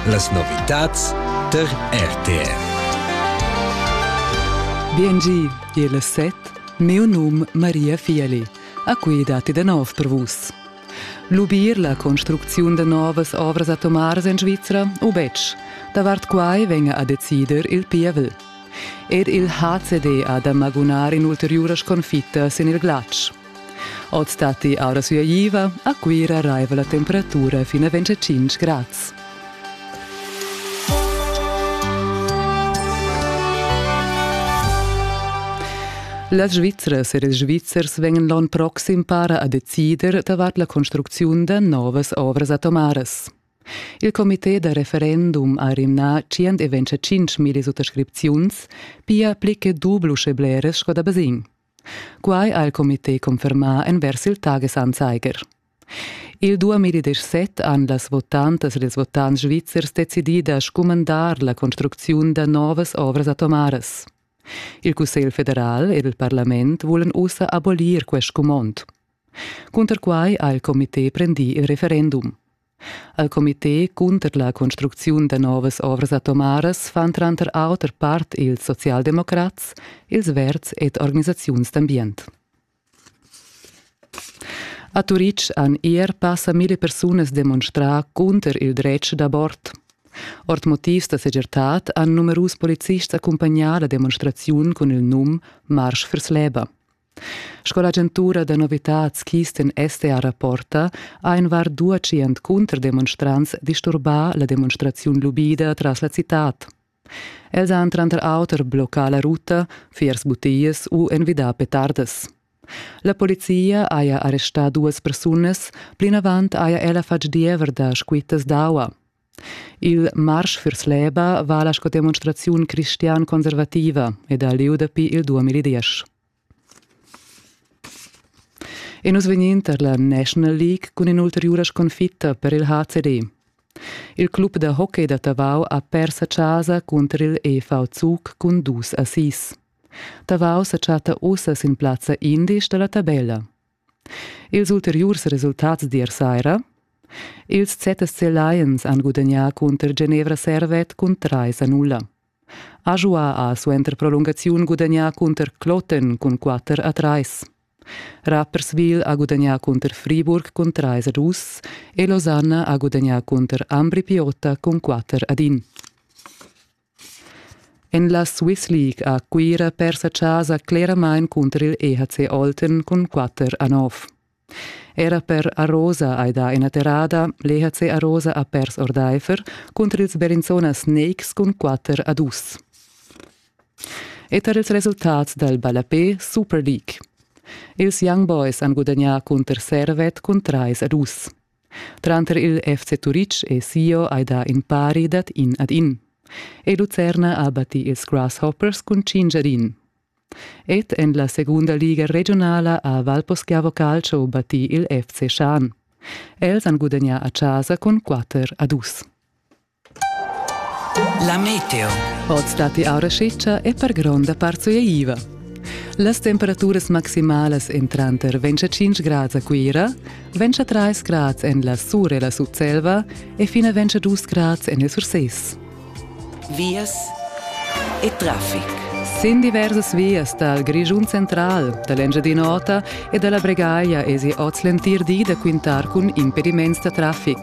Las novitads tar RTR. Biengi, il set, mio num Maria Fieli. A qui datti da nov per vus. Lubir la construcziun da novas ovras atomaras en Svizra u betg? Davart quai venga a decider il pievel. Er il HCD ha da magunar in'ulteriura sconfitta sin il glatsch. Oz datti aura suaiva, a Cuira raiva la temperatura fin a 25 grads. Las Svizzras e ils Svizzers vegnan l'onn proxim para a decider davart la construcziun da novas ovras atomaras. Il comité da referendum ha rimnà 125 milli suttascripziuns, pia pli che dublu sche bleras sco da basegn. Quai ha il comité confermà envers il Tagesanzeiger. Il 2017 han las votantas ed ils votants svizzers decidì da scumandar la construcziun da novas ovras atomaras. Il Cussegl federal ed il parlament vulan ussa abolir quest scumond. Cunter quai ha il comité prendì il referendum. Al comité cunter la construcziun da novas ovras atomaras fan tranter auter part ils socialdemocrats, ils verds ed organisaziuns d'ambient. A Turitg han ier passa mille persunas demonstrà cunter il dretg d'abort. Ord motivs da segirtad han numerus polizists accumpagnà la demonstraziun cun il num Marsch vers Läber. Sco l'agentura da novitads Kisten STA rapporta, ha in var dua tschient cunterdemonstrants disturbà la demonstraziun lubida tras la citad. Els han tranter auter bloccà la ruta, fiers butias u envidà petardas. La polizia haja arrestà duas persunas, plinavant haja ella fatg diever da squittas d'aua. Il marsch vers l'EBA vala sco demonstraziun cristian-conservativa ed ha lieu dapi il 2010. E nus vegnin tar la National League cun in'ulteriura sconfitta per il HCD. Il club da hockey da Tavau ha pers a casa cunter il EV Zug cun dus assis. Tavau sa chatta ussa sin plazza indisch da la tabella. Ils ulteriurs resultats d'ier saira Ils ZSC Lions han gudagnà cunter Genevra Servet cun trais a nulla. Ajoua ha suenter prolungaziun gudagnà cunter Kloten cun quatter a trais. Rapperswil ha gudagnà cunter Friburg cun trais a dus e Losanna ha gudagnà cunter Ambri Piotta cun quatter ad in. En la Swiss League ha Cuira persa chasa cleramain cunter il EHC Olten cun quatter a nov. Era per Arosa hai dà ina terrada, l'EHC Arosa ha pers ordaifer cunter ils Berinzona Snakes cun quatter a dus. E tar ils resultats dal ballapé Super League. Ils Young Boys han gudagnà cunter Servet cun trais a dus. Tranter il FC Turitg e Sio hai dà in pari dad in ad in. E Lucerna ha battì ils Grasshoppers cun cinc ad in. Ed en la segunda liga regionala ha Valposchiavo Calcio battì il FC Schan. Els han gudagnà a casa cun 4 a 2. La meteo. Oz datti aura scitscha e per gronda part sueiva. Las temperaturas maximalas en tranter ventg e tschintg grads a Cuira, ventg a trais grads en la Sur e la Sutselva e fina ventg a dus grads en il Surses. Vias e traffic. Sin diversas vias dal Grischun central, da l'Engiadin'Ota e da la Bregaglia esi oz l'entir di da quintar cun impediments da traffic.